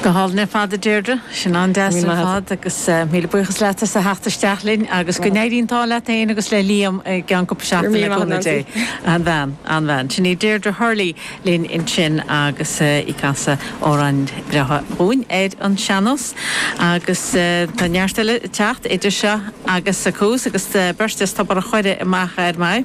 Go hálainn ar fad, a Deirdre. Sin an-deas ar fad agus míle buíochas leat as a theacht isteach linn agus go n-éirí an t-ádh leat féin agus le Liam i gceann cúpla seachtain, le cúnamh Dé. An-bhean, an-bhean. Sin í Deirdre Hurley linn ansin agus í ag casadh amhráin bhreátha dhúinn ar an sean-nós. Agus tá neart eile ag teacht idir seo agus a seacht agus beirt as Tobar a' Choire i m'aice anois.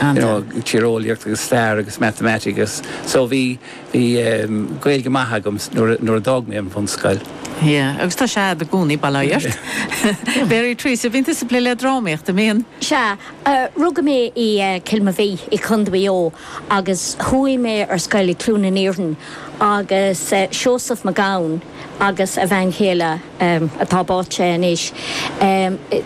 tíreolaíocht agus stair agus matamaitic agus so bhí Gaeilge maith agam nuair a d'fhág mé an bhunscoil. Yeah agus tá sé a'd i gcónaí, bail ó Dhia ort. Mary Treasa, bhíonn tusa ag plé le drámaíocht, an mbíonn? Sea, rugadh mé i Cill Mobhí i Contae Mhaigh Eo agus chuaigh mé ar scoil i Cluain an Iarainn agus Seosamh Mac Gabhann agus a bhean chéile Atá, Báite anois,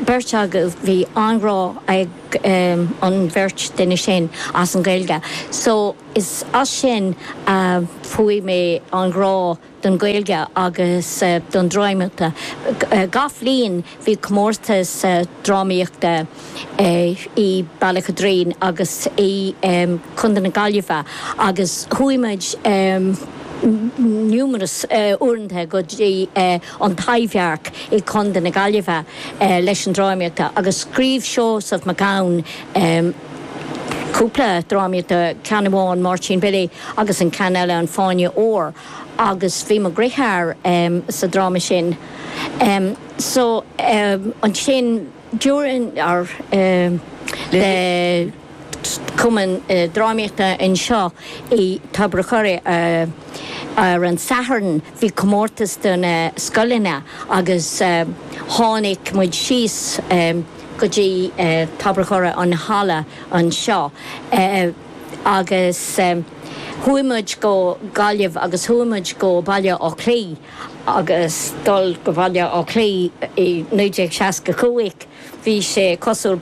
beirt acu bhí an-ghrá ag. an bheirt duine sin as an Ghaeilge so is as sin a fuair mé an grá don Ghaeilge agus don drámaíochta. Gach bhliain bhí comórtas drámaíochta i Bealach an Doirín agus i Contae na Gaillimhe agus chuaigh muid numerous uaireanta go dtí An Taibhdhearc i gContae na Gaillimhe leis an drámaíochta agus scríobh Seosamh Mac Gabhann cúpla drámaíochta, ceann amháin Máirtín Billy agus an ceann eile An Fáinne Óir agus bhí mo dheartháir sa dráma sin so ansin d'fhreastail ar cumann drámaíochta anseo i dTobar a' Choire ar an Satharn. Bhí comórtas do na scoileanna agus tháinig muid síos go dtí Tobar an Choire, an halla anseo, agus chuaigh muid go Gaillimh agus chuaigh muid go Baile Átha Cliath agus dul go Baile Átha Cliath i 1965. Bhí sé cosúil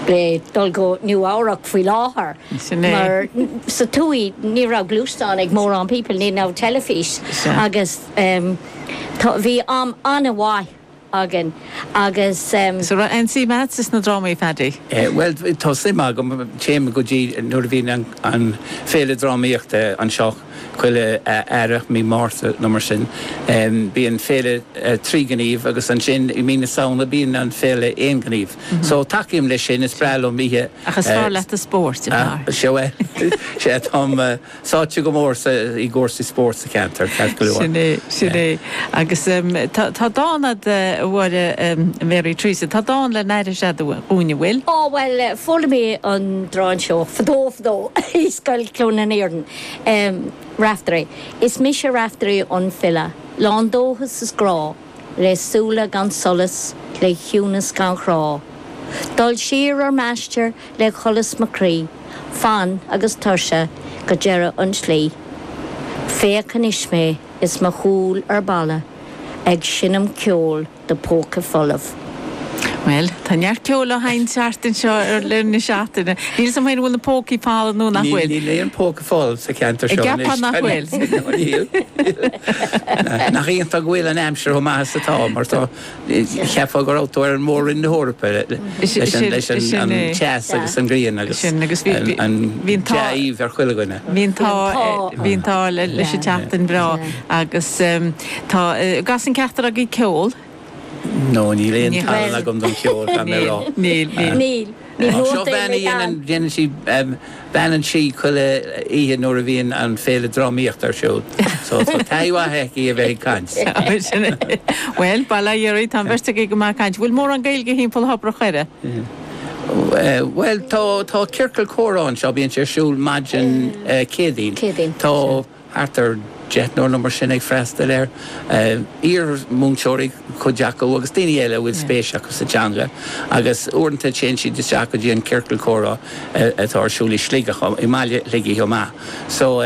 le dul go Nua-Eabhrac faoi láthair mar sa tuath ní raibh gluaisteáin ag mórán people, ní raibh teilifís agus bhí am an-mhaith againn agus. So an raibh aon suim a'dsa sna drámaí, Phaddy? Bhuel tá suim agam, téim go dtí nuair a bhíonn an féile drámaíochta anseo. Chuile Earrach, Mí Márta nó mar sin, bíonn Féile Trí Gníomh agus ansin i Mí na Samhna bíonn an Féile Aon Ghníomh. So tacaím leis sin, is breá liom oíche. Ach is fearr leat an spóirt, ab fhearr? Sea, bhuel, sea, táim sáite go mór i gcúrsaí spóirt sa cheantar, ceart go leor. Sin é, sin é. Agus tá dán a'd, a Mháire Mary Treasa, tá dán le n-aithris a'd dhúinn, an bhfuil? Á, bhuel, chuala mé an dán seo fadó fadó i Scoil Chluain an Iarainn. Raiftearaí, Is mise Raiftearaí an file, Lán dóchas is grá, Le súile gan solas, Le ciúnas gan chrá. Dul siar ar m'aistear, Le solas mo chroí, Fann agus tuirseach, Go deireadh an tslí. Féach anois mé, Is mo chúl le balla, Ag seinm ceoil. do póca folamh. Bhuel, tá neart ceoil á sheinnt thart anseo i rith na seachtaine. Níl 'fhios a'm féin an bhfuil na pócaí folamh nó nach bhfuil. Níl aon phóca folamh sa cheantar seo anois. Ceapaim nach bhfuil. Níl. Nach iontach go bhfuil an aimsir chomh maith is atá mar tá, cheapfá go raibh tú ar Mhór-Roinn na hEorpa leis an teas agus an ghrian agus an dea-aoibh ar chuile dhuine. Bhí an t-ádh libh leis an tseachtain bhreá agus. Tá, an gcasann ceachtar agaibh, ceol? No, níl aon tallann agam don cheol, caithfidh mé a rá. Níl, níl, níl. Níl nóta ar bith agam. Seo bean a dhéanann, dhéanann sí, beannan sí chuile oíche nuair a bhíonn an Féile Drámaíochta ar siúl. So, tá taithí mhaith aici a bheith ag caint. Sin é. Bhuel, bail ó Dhia oraibh, tá an bheirt agaibh go maith ag caint. Bhfuil mórán Gaeilge timpeall Thobar an Choire? Bhuel, tá, tá ciorcal comhrá anseo, bíonn sé ar siúl maidin Céadaoin. Céadaoin, sin. Tá. thart ar deichniúr nó mar sin ag freastail air, iar-mhúinteoirí cuid acu agus daoine eile a bhfuil spéis acu sa teanga agus uaireanta téann siad isteach go dtí an ciorcal comhrá atá ar siúl i Sligeach, i mbaile Shligigh chomh maith. So,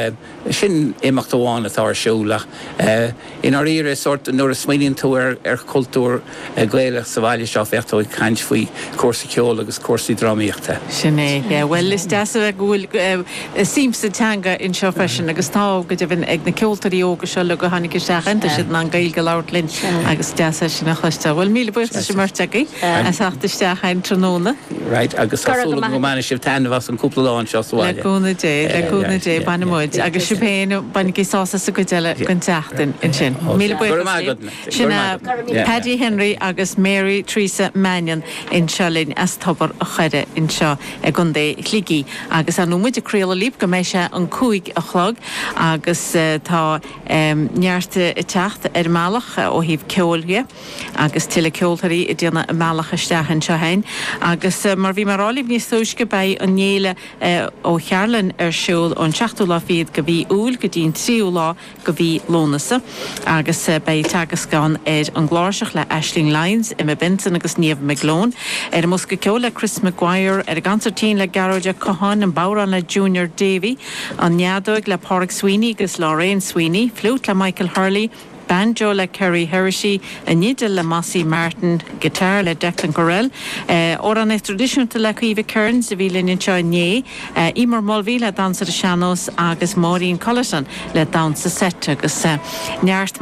sin imeacht amháin atá ar siúl ach. I ndáiríre, is sórt, nuair a smaoiníonn tú ar chultúr Gaelach sa bhaile seo, bheadh tú ag caint faoi chúrsaí ceoil agus cúrsaí drámaíochta. Sin é, yeah. Bhuel, is deas a bheith, go bhfuil suim sa teanga anseo freisin agus tá, go deimhin, ag na ceoltóirí óga seo uilig a tháinig isteach ann, tá siad in ann Gaeilge a labhairt linn agus is deas é sin a chloisteáil. Bhuel, míle buíochas as an mbeirt agaibh as teacht isteach an tráthnóna. Right, agus tá súil agam go mbainfidh sibh taitneamh as an cúpla lá anseo sa bhaile. Le cúnamh Dé, le cúnamh Dé, bainfidh muid, agus sibh féin, bainigí sásamh as an gcuid eile den tseachtain ansin. Míle buíochas libh. Sin é Paddy Henry agus Mary Theresa Mannion anseo linn as Tobar a' Choire anseo i gContae Shligigh agus ar ndóigh muid ag craoladh libh go mbeidh sé an cúig a chlog agus tá neart ag teacht ar an mbealach ó thaobh ceoil de. Agus tuilleadh ceoltóirí ag déanamh a mbealach isteach anseo fhéin. Agus mar bhí mé a rá libh níos túisce, beidh an fhéile Uí Chearbhalláin ar siúl ón seachtú lá fichead de mhí Iúil go dtí'n tríú lá de mhí Lúnasa. Agus beidh teagasc ann ar an gcláirseach le Aisling Lyons, Emma Benson agus Niamh McGlone, ar an mbosca ceoil le Chris McGuire, ar an gconsairtín le Gearóid Ó Catháin, an bodhrán le Junior Davey, an fheadóig le Páraic Sweeney agus Lorraine Sweeney, fliút le Michael Hurley, banjo le Kerry Heraty, fidil le Mossy Martin, guitar le Declan Courell, amhráin thraidisiúnta le Caoimhe Kearns, a bhí linn anseo inné, Emer Mulvey le Damhsa ar an Sean-Nós agus Máirín Cullerton le Damhsa Seit agus Neart.